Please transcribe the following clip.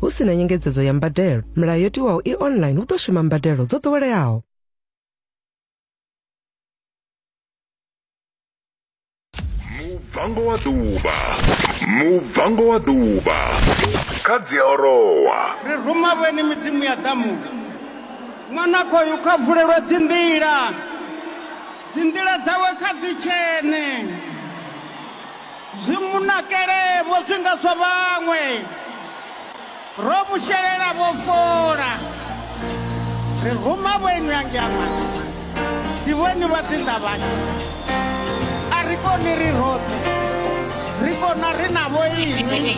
Hu si na nyengedzedzo ya mbadelo, milayo yo tiwaho i online hu ḓo shuma mbadelo dzo ḓoweleaho. mubvango wa ḓuvha mubvango wa ḓuvha kha dziaorowa ri ruma vheni midzimu ya ḓamu ṅwana khoyu kha vulelwe dzinḓila dzinḓila dzawe kha dzi tshene Zwi mu nakele-vho zwi nga zwa vhaṅwe, ro mu shelela vho fola. Ri ruma vhoinu a ngiama, ndi vhoinu vha dzinda vhashu. A ri koni ri roṱhe, ri kona ri na vhoinu.